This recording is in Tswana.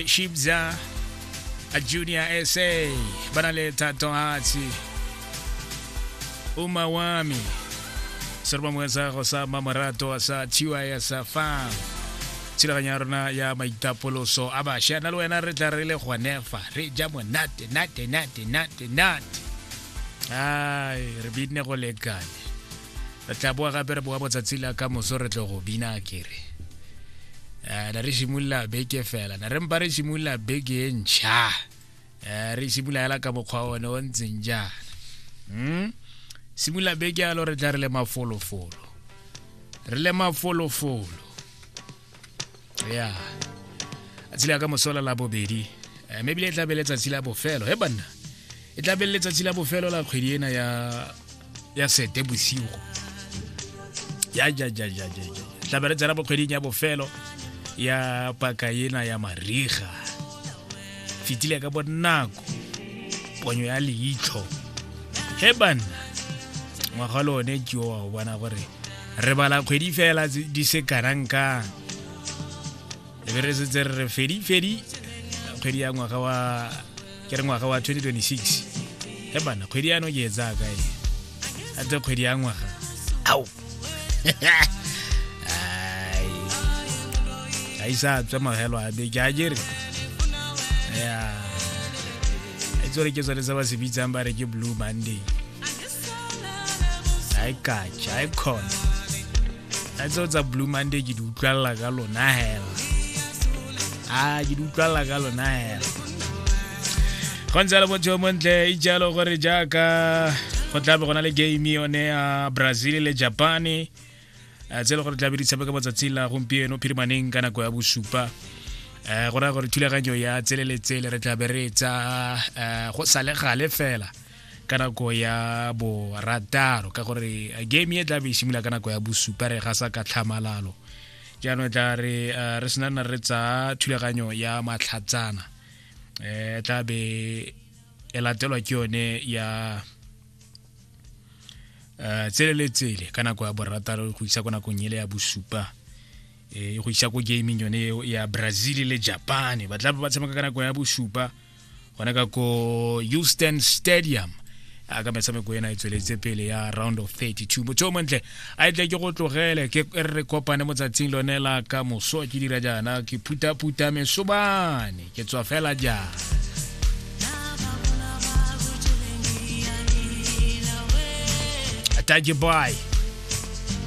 shibza a junior sa ba na le thatohatsi uma wami se re ba moetsa go sa mamorato a sa thiwa ya sa fa thulaganyo ya rona ya maitapoloso a bašwa na le wena re tla re le gonefa re ja monate nate nate nate nate ai re binne go lekane re tla boa gape re boa botsatsi la ka moso re tlo go bina kere um na re simolola beke fela na re mpa re simolola beke e ntšha um re simolola fela ka mokgwa one o ntseng jaana um simolola beke yalo re tla re le mafolofolo re le mafolofolo ya tsatsi la ka mosola la bobedi eh, mme ebile e tla be letsatsi la bofelo he banna e tla be letsatsi la bofelo la kgwedi ena ya ya sete bosigo ya ja ja ja ja ja tla be re tsena bokgweding ya bofelo ya paka ena ya mariga fitile ka bonako ponyo ya leitlho he banna ngwaga le one ke o wa go bona gore re bala kgwedi fela di se kanang ka e be re setse re re fedi fedi kgwedi ya ngwaga wa ke re ngwaga wa 2026 e bana kgwedi yano ke e tsaya kae a tse kgwedi ya ngwaga ao ga isa tswe magelo a beke a jere ya e tsore ke tsone tse ba se bitsang ba re ke blue monday a e kacha a e khona a tseo tsa blue monday ke di utlwalela ka lona hela a ke di utlwalela ka lona hela go ntse le motho yo montle e jalo gore jaaka go tlabe gona le game yone ya brazil le japane eh, tse e le gore tlabe di tshameka matsatsi la gompieno phirimaneng ka nako ya bosupa um go raya gore thulaganyo ya tsele le tsele re tlabe re e tsa um go sa le gale fela ka nako ya borataro ka gore uh, game e tla be e simolola ka nako ya bosupa re ga sa ka tlhamalalo jaanong tla re uh, re senana re tsa thulaganyo ya matlhatsana um tla be e latelwa ke yone ya um tsele le tsele ka nako ya borataro go isa ko nakong ele ya bosupa e go isa ko gaming yone ya brazil le japan ba tla ba tshameka ka nako ya bosupa gone ka ko houston stadium a ka metshameko ena e tsweletse pele ya round of 32 motho o montle a e tle ke go tlogele ke e re kopane mo tsatsing lone la ka moso ke dira jaana ke phutaphuta mesobane ke tswa fela jaana Tadje Boy.